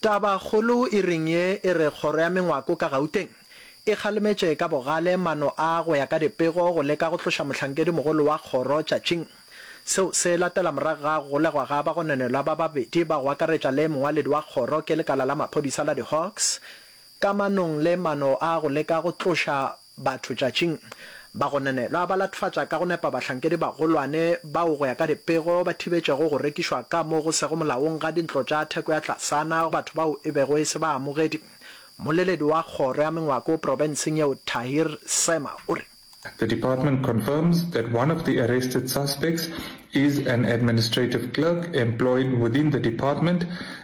Tabakgolo e reng ye e re kgoro ya mengwako ka Gauteng e kgalemetše ka bogale mano a go ya ka dipego go leka go tloša mohlankedi mogolo wa kgoro tšatšing. Seo se latela morago ga go golegwa ga bagononelwa ba babedi ba go akaretša le mongwaledi wa kgoro ke lekala la maphodisa la di-Hawks ka manong le mano a go leka go tloša Batho tšatšing ba go nanelwa ba latofatša ka go nepa bahlankedi-bagolwane bao go ya ka dipego ba thibetšego go rekišwa ka mo go sego molaong ga dintlo tša theko ya tlasana go batho bao e bego e se baamogedi. Mmoleledi wa kgoro ya mengwako profenseng yeo Tahir Sema o re. The department confirms that one of the arrested suspects is an administrative clerk employed within the department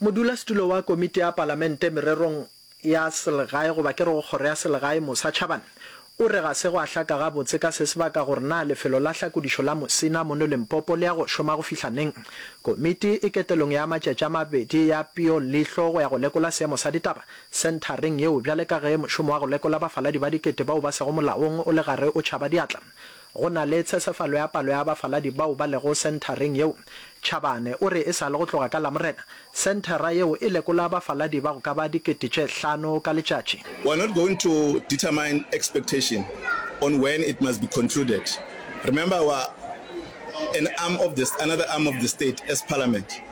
Modulasetulo wa Komiti ya Palamente Mererong ya Selegae goba ke re go Kgoro ya Selegae Mosa Chabane o re ga se gwa hlaka gabotse ka se se baka gore na lefelo la hlakodišo la Mosina mono Limpopo le ya go šoma go fihla neng. Komiti e ketelong ya matšatši a mabedi ya peo leihlo go ya go lekola seemo sa ditaba senthareng yeo bjale ka ge mošomo wa go lekola bafaladi ba dikete bao ba sego molaong o le gare o tšhaba diatla. Go na le tshesefalo ya palo ya bafaladi bao ba lego senthareng yeo. Chabane o re e sa le go tloga ka Lamorena, senthara yeo e lekola bafaladi ba go ka ba dikete tše hlano ka letšatši. We are not going to determine expectation on when it must be concluded. Remember we are an arm of the another arm of the state as Parliament.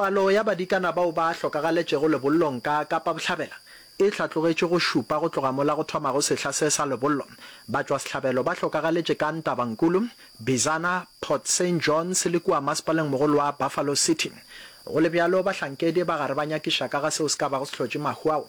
Palo ya badikana bao ba hlokagaletšego lebollong ka Kapa Bohlabela e hlatlogetšwe go šupa go tloga mola go thomago sehla se sa lebollo. Batšwasehlabelo ba hlokagaletše ka Ntabankulu, Bizana, Port Saint Johns le kua masepalengmogolo wa Buffalo City. Go le bjalo, bahlankedi ba gare ba nyakiša ka ga seo se ka bago se hlotše mahu ao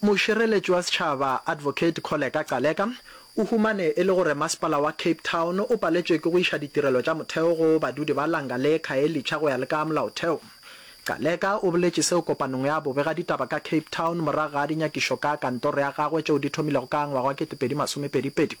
Mošireletši wa Setšhaba, Advocate Kholeka Gcaleka, o humane e le gore masepala wa Cape Town o paletšwe ke go iša ditirelo tša motheo go badudi ba Langa le Khayelitsha go ya le ka molaotheo. Gcaleka o boletše seo kopanong ya bobegaditaba ka Cape Town morago ga dinyakišo ka kantoro ya gagwe tšeo di thomilego ka ngwaga wa kete pedi masome pedi pedi.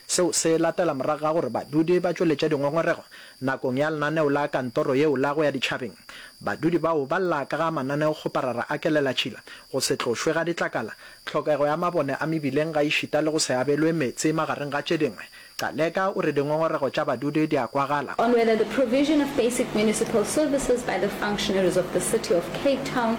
Seo se latela morago ga gore badudi ba tšweletše dingongorego nakong ya lenaneo la kantoro yeo la go ya ditšhabeng. Badudi bao ba lla ka ga mananeo kgoparara a kelelatšhila, go se tlošwe ga ditlakala, tlhokego ya mabone a mebileng gaešita le go se abelwe meetse magareng ga tše dingwe. Caleka o re dingongorego tša badudi di a kwagala. On whether the provision of basic municipal services by the functionaries of the City of Cape Town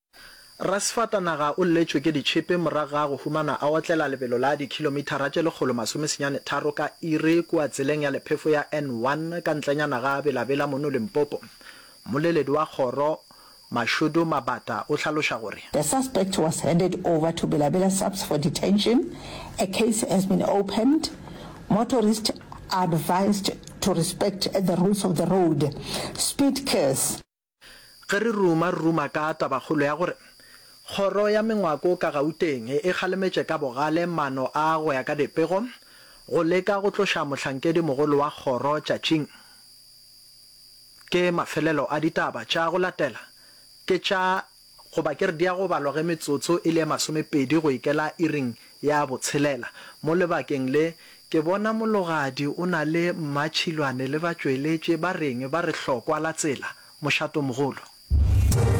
Rasefatanaga o lletšwe ke ditšhipi morago ga go humana a otlela lebelo la dikhilomithara tše lekgolo masome senyane tharo ka iri kua tseleng ya lephefo ya N1 ka ntlenyana ga Bela Bela mono Limpopo. Mmoleledi wa kgoro, Mashudu Mabata o hlaloša gore. The suspect was handed over to Bela Bela SAPS for detention, a case has been opened, motorists are advised to respect the rules of the road, speed cars. Ge re ruma-ruma ka tabakgolo ya gore Kgoro ya Mengwako ka Gauteng e kgalemetše ka bogale mano a go ya ka dipego go leka go tloša mohlankedi mogolo wa kgoro tšatšing, ke mafelelo a ditaba tša go latela ke tša Goba ke re di a go balwa ge metsotso e le ye masomepedi go ikela iring ya botshelela. Mo lebakeng le, ke bona mologadi o na le mmatšhilwane le batšweletše ba reng ba re hlokwa la tsela, mošatomogolo.